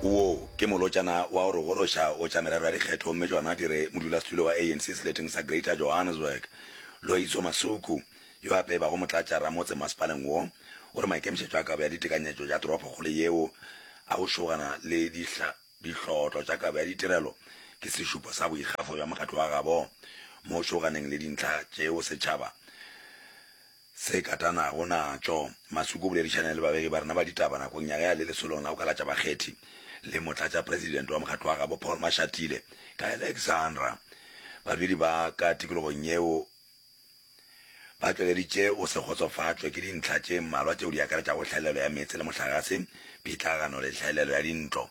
Woo ke molotšana wa go re goroša go tša merero ya dikgetho mme tšona di re modulasetulo wa ANC seleteng sa Greater Johannesburg, Loyiso Masuku, yo gape e bago motlatša ramotse mmasepaleng wo, o re maikemišetšo a kabo ya ditekanyetšo tša toropokgolo yeo a go šogana le dihlotlo tša kabo ya ditirelo ke sešupo sa boikgafo bja mokgatlo wa gabo mo šoganeng le dintlha tšeo setšhaba Se katanago natšo, Masuku o boledišane le babegi ba rena ba ditaba nakong ya ge a le lesolong la go kalatša bakgethi le Motlatšapresidente wa mokgatlo wa gabo Paul Mashatile ka Alexandra. Badudi ba ka tikologong yeo ba tšweleditše go se kgotsofatšwe ke dintlha tše mmalwa tšeo di akaretšago hlaelelo ya meetse le mohlagase, phitlagano le hlaelelo ya dintlo.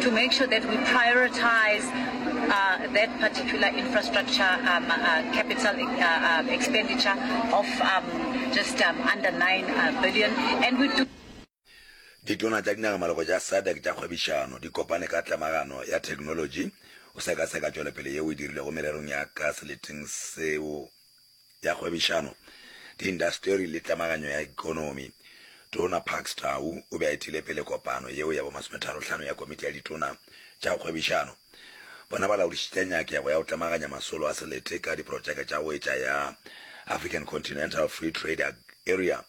to make sure that we prioritize uh, that particular infrastructure um, uh, capital uh, uh, expenditure of um, just um, under 9 uh, billion. And we do ditona tša dinagamalogo tša sadak tša kgwebišano di kopane ka tlamagano ya thekenolotši o sekaseka tšwelopele yeo e dirilego mererong ya ka seleteng seo ya Kgwebišano, Diintaseteri le Tlemaganyo ya Ekonomi, Tona Parks Tau, o be a etile pele kopano yeo ya bomasometharohlano ya Komiti ya Ditona tša Kgwebišano. Bona ba laodišitše nyakego ya go tlemaganya masolo a selete ka diprotšeke tša go etša ya African Continental Free Trade Area,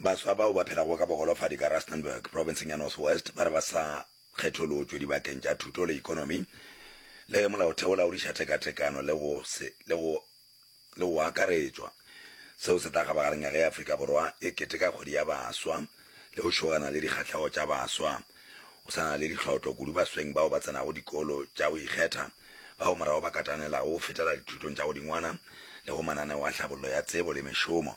Baswa bao ba phelago ka bogolofadi ka Rustenburg, profenseng ya North West, ba re ba sa kgetholotšwe dibakeng tša thuto le ekonomi le molaotheo laodiša tekatekano le go se le go le go akaretšwa. Seo se tla kgabagareng ya ge Afrika Borwa e keteka kgwedi ya baswa le go šogana le dikgahlego tša baswa. Go sa na le ditlhotlo kudu basweng bao ba tsenago dikolo tša go ikgetha, bao morago ba katanelago go fetela dithutong tša godingwana le go mananeo a tlhabollo ya tsebo le mešomo.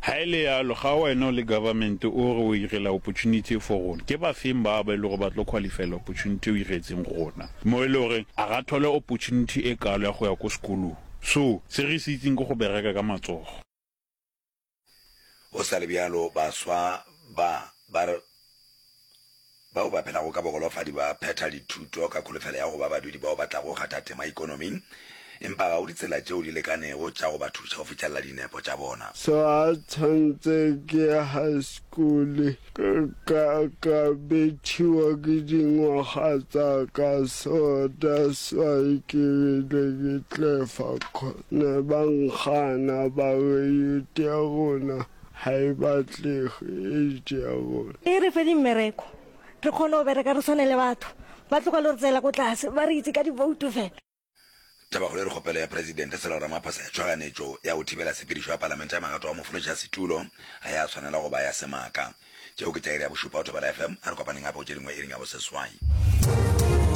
Ha e le yalo, ga wena o le government o re o irela opportunity e fo rona, ke bafeng ba ba e lego ba tlo qualifyela opportunity e o iretseng rona, mo e le gore a ga thole opportunity e kalo ya go ya ko sekolong. So, se re se itseng ke go bereka ka matsogo. Go sa le bjalo, baswa ba ba re Bao ba phelago ka bogolofadi ba phetha dithuto ka kholofelo ya go ba badudi bao ba tlago go kgatha tema ikonoming, empa ga go ditsela tšeo di lekanego tša go ba thuša go fihlelela dinepo tša bona. So a tshwantse ke high school ka ka ka bethiwa ke dingwaga tsa ka so that's why ke rile ke tlefa cause ne ba nkgana ba re youth ya rona Ha e batlege, e e tšea gore. E re fe dimmereko, re kgone go bereka re swane le batho. Ba tloga lo re tseela ko tlase, ba re itse ka diboutu fela. Tabakgolo e re kgopelo ya Presidente Cyril Ramaphosa ya tšhoganetšo ya go thibela sepedišo ya Palamente ya magato a mofološa setulo ga ya swanela go ba ya semaka. Tšeo ke tša iri ya bošupa go Thobela FM. A re kopaneng gape go tše dingwe iring ya boseswai.